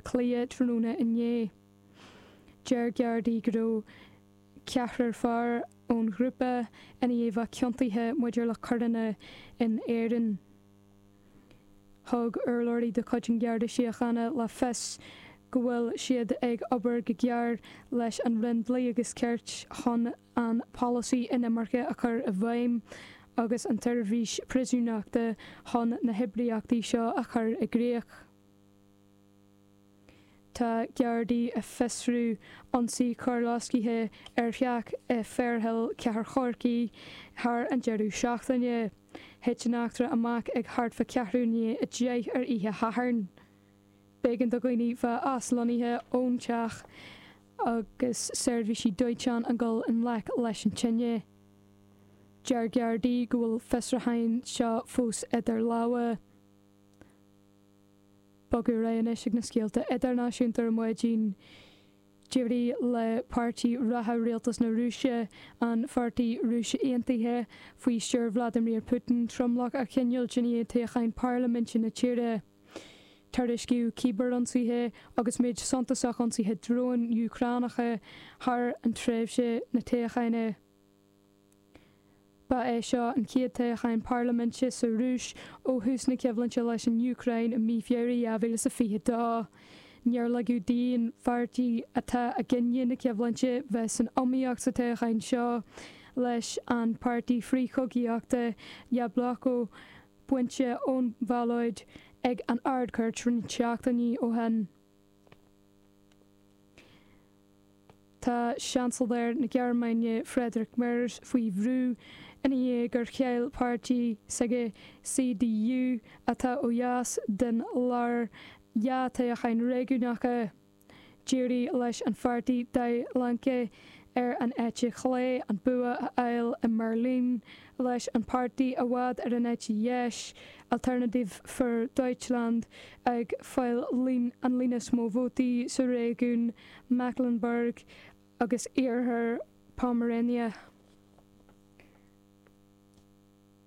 Cliath tráthnóna inné. Deir Gardaí go raibh ceathrar fear ón ghrúpa ina ndiaidh a bheith ciontaithe maidir le coireanna in Éirinn. Thug urlabhraí de chuid an Gharda Síochána le fios go bhfuil siad ag obair go géar leis an Roinn Dlí agus Cirt chun an polasaí inimirce a chur i bhfeidhm agus an tSeirbhís Priosúnachta chun na hoibríochtaí seo a chur i gcrích. Tá Gardaí ag fiosrú ionsaí coirloiscthe ar theach i Fairhill, Cathair Chorcaí, thar an deireadh seachtaine. Thit an eachtra amach ag thart fá ceathrú i ndiaidh a deich ar oíche Shathairn. B'éigean do dhaoine bheith aslonnaithe ón teach agus seirbhísí dóiteáin ag gabháil i ngleic leis an tine. Deir Gardaí go bhfuil fiosrúcháin seo fós idir lámha. Bogadh ar aghaidh anois ag na scéalta idirnáisiúnta ar mhaidin. D'éirigh le páirtí reatha rialtas na Rúise, an Pháirtí Rúis Aontaithe, faoi stiúir Vladimir Putin, tromlach a choinneáilt i dtoghchán parlaiminte na tíre. Tuairiscíodh cíbear-ionsaithe agus méid suntasach ionsaithe dróin Úcránacha thar an tréimhse na dtoghchán. Ba é seo an chéad toghchán parlaiminte sa Rúis ó thús na coimhlinte leis an Úcráin i mí Feabhra 2022. Níor ligeadh d'aon pháirtí atá i gcoinne na coimhlinte bheith san iomaíocht sa toghchán seo, leis an pháirtí frith-chogaíochta Yabloko bainte ón bhallóid ag an Ard-Chúirt roinnt seachtainí ó shin. Tá Seansailéir na Gearmáine Friedrich Merz faoi bhrú ina dhiaidh gur chaill páirtí s'aige, CDU, atá ó dheas den lár, dhá thoghchán réigiúnacha. D'éirigh leis an pháirtí Die Linke, ar an eite chlé an bua a fháil i mBeirlín, leis an páirtí i bhfad ar an eite dheis, Alternative für Deutschland, ag fáil an líon is mó vótaí sa réigiún Mecklenburg agus Iarthar Pomerania.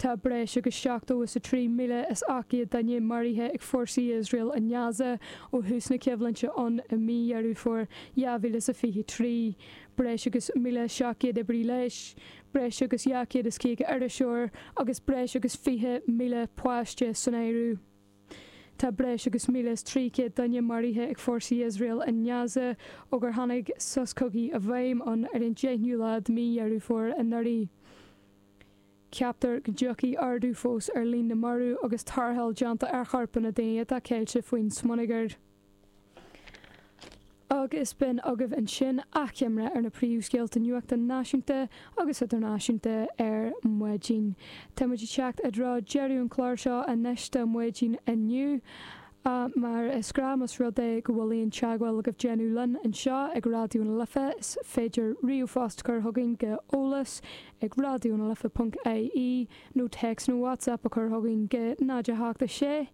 Tá breis agus seachtó is a trí míle is ocht gcéad duine maraithe ag fórsaí Iosrael i nGaza ó thús na coimhlinte ann i mí Dheireadh Fómhair dhá mhíle is a fiche trí, breis agus míle seacht gcéad oibrí leighis, breis agus dhá chéad is caoga iriseoir agus breis agus fiche míle páiste san áireamh. Tá breis agus míle is trí chéad duine maraithe ag fórsaí Iosrael i nGaza ó gur tháinig sos cogaidh i bhfeidhm ann ar an deichniú lá de mí Dheireadh Fómhair anuraidh. Ceaptar go dtiocfaidh ardú fós ar líon na marbh agus tarrtháil déanta ar chorpanna daoine atá ceilte faoin smionagar. Agus b'in agaibh ansin achoimre ar na príomhscéalta nuachta náisiúnta agus idirnáisiúnta ar maidin. Tá muid ag teacht i dtreo dheireadh an chláir seo anois do mhaidin inniu. Mar is gnáth más rud é go bhfuil aon teagmháil le déanamh linn anseo ag Raidió na Life is féidir ríomhphost a chur chugainn go eolas ag raidionalife ponc ie nó téacs nó WhatsApp a chur chugainn go 0 8 7 6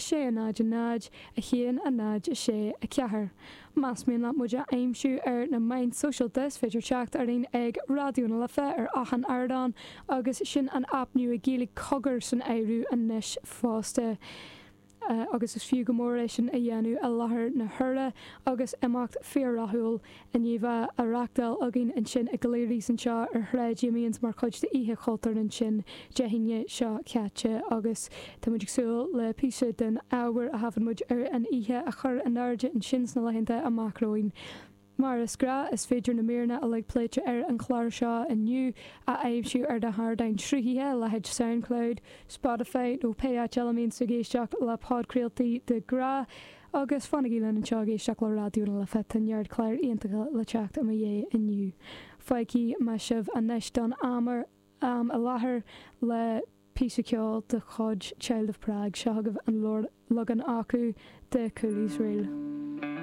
6 0 0 1 0 6 4 Más mian leat muid a aimsiú ar na meáin sóisialta is féidir teacht orainn ag Raidió na Life ar achan ardán agus sin an aip nua Gaeilge Cogar san áireamh anois fosta. agus is fiú go mór é sin a dhéanamh i láthair na huaire agus imeacht fíor-rathúil inti á reáchtáil againn ansin i gCleary's anseo ar Shráid Amiens mar chuid d'Oíche Chultúir ansin Dé hAoine seo caite agus tá muid ag súil le píosa den ábhar a thaifead muid ar an oíche a chur in airde ansin sna laethanta amach romhainn. Mar is gnáth, is féidir na míreanna uilig pléite ar an chlár seo inniu a aimsiú ar na hardáin sruthaithe, leithéid Soundcloud, Spotify nó pé áit eile a mbíonns tú ag éisteacht le podchraoltaí de ghnáth. Agus fanaigí linn anseo ag éisteacht le Raidió na Life, tá neart cláir iontacha le teacht i mo dhiaidh inniu. Fágfaidh mé sibh anois don am i láthair le píosa ceoil de chuid Child of Prague, seo agaibh an leagan acu de Cooley's Reel.